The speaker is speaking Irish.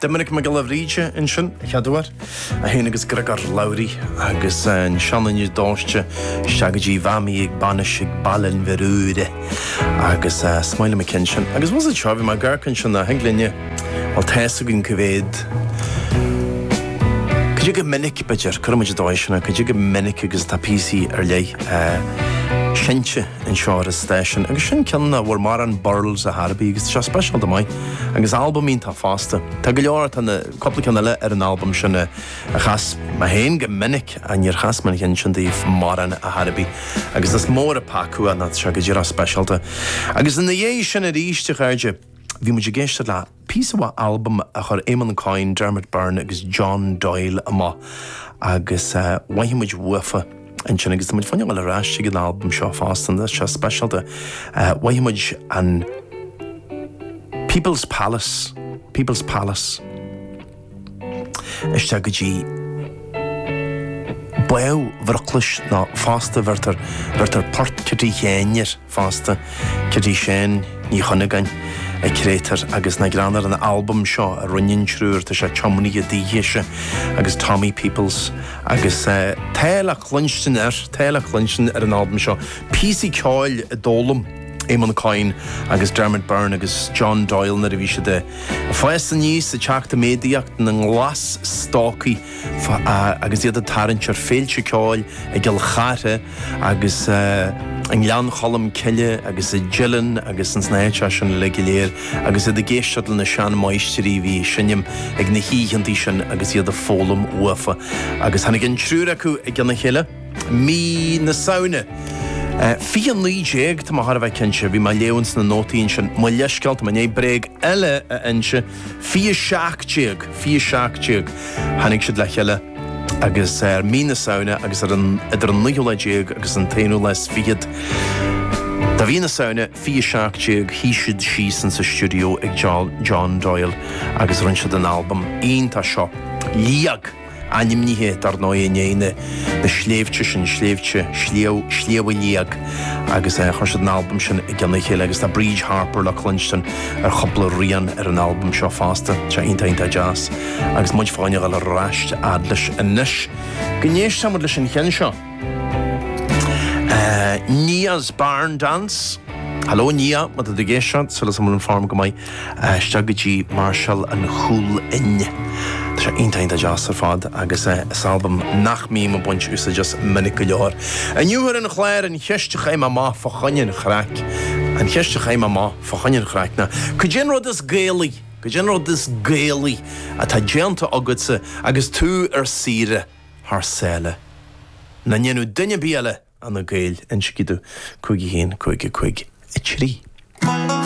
Doiminic Mac Giolla Bhríde ansin a chairde, é féin agus Griogair Labhruidh agus an Seanduine Dóite isteach go dtí Bha mi aig banais aig Baile Inbhir Aora agus smaoilim aici ansin agus was it seo bhí mé ag amharc ansin a thuig linne bhuel tá a fhios againn go mhéad go dtí go minic b'fhéidir cuirimid i dtoisceana go dtí go minic agus tá píosaí ar leith eh, sinte. an seoir station agus sin cionn nach bhfuair mórán burls ar chor ar bith agus tá sé speisialta maith agus albam iontach fosta. Tá go leor, tá na, cúpla ceann eile ar an albam sin a chas mé féin go minic ach níor chas mé an ceann sin daoibh mórán ar chor ar bith agus is mór an peaca é nó tá sé go díreach speisialta. Agus ina dhiaidh sin aríst a chairde bhí muid ag éisteacht le. Píosa mhaith albam a chuir Éamonn Coyne, Dermot Byrne agus John Doyle amach agus mhoithigh muid uafa ansin agus tá muid fá choinne a ghabháil ar ais chuig an albam seo fosta an seo speisialta mhoithigh muid an People's Palace, People's Palace. isteach go dtí Bá Bhroclais ná fosta bheirtear bheirtear port Chití Sheáin air fosta Cití Sheáin Ní Chuinneagáin an créatúr agus na greann ar an albam seo a rinne an triúr tá sé tiomnaithe dise agus Tommy Peoples agus eh, tá le cluinstin ar tá le cluinstin ar an albam seo píosaí ceoil a d'fhoghlaim Éamon Coyne agus Dermot Byrne agus John Doyle nuair a bhí siad ag fás aníos is ag teacht i méadaíocht ina nglas-stócaigh agus iad ag tarraingt ar féilte ceoil i gCill Chartha agus i nGleann Cholm Cille agus i dTeileann agus ins na háiteacha sin uilig go léir agus iad ag éisteacht le na seanmháistrí a bhí ag seinm ag na hoícheantaí sin agus iad ag foghlaim uafa agus tháinig an triúr acu i gcionn a chéile. mí na Samhna. 2019, tá mé thar a bheith cinnte, bhí mé ag léamh ins na nótaí ansin, mo leithscéal, tá mé i ndiaidh bréag eile a inse, 2017, 2017, tháinig siad le chéile agus ar mí na Samhna agus ar an, idir an naoú lá déag agus an t-aonú lá is fichead de mhí na Samhna, 2017, shuigh siad síos insa stiúideo ag John Doyle agus rinne siad an albam iontach seo, Liag. ainmnithe dar ndóigh i ndiaidh na sléibhte sin, sléibhte Shliabh, Sliabh Liag agus chuir siad an albam sin i gcionn a chéile agus tá Bríd Harper le cluinstin ar chúpla rian ar an albam seo fosta, tá sé iontach iontach deas agus muid fá choinne a ghabháil ar ais a fhad leis anois go n-éistfidh muid leis an cheann seo Nia's Barn Dance Hello Nia, má tá tú ag éisteacht, súil agam go bhfuil an form go maith. isteach go dtí Marshall an Chúil-fhionn. Tá sé iontach iontach deas ar fad agus is albam nach mbím ag baint úsáid as minic go leor. Inniu ar an chlár, an cheist a chaith mé amach fá choinne an chraic, an cheist a chaith mé amach fá choinne an chraic ná, cad é an rud is Gaelaí, cad é an rud is Gaelaí atá déanta agatsa agus tú ar saoire thar sáile? Nach ndéanfadh duine ar bith eile, ach na Gaeil, insígí domh, 51553.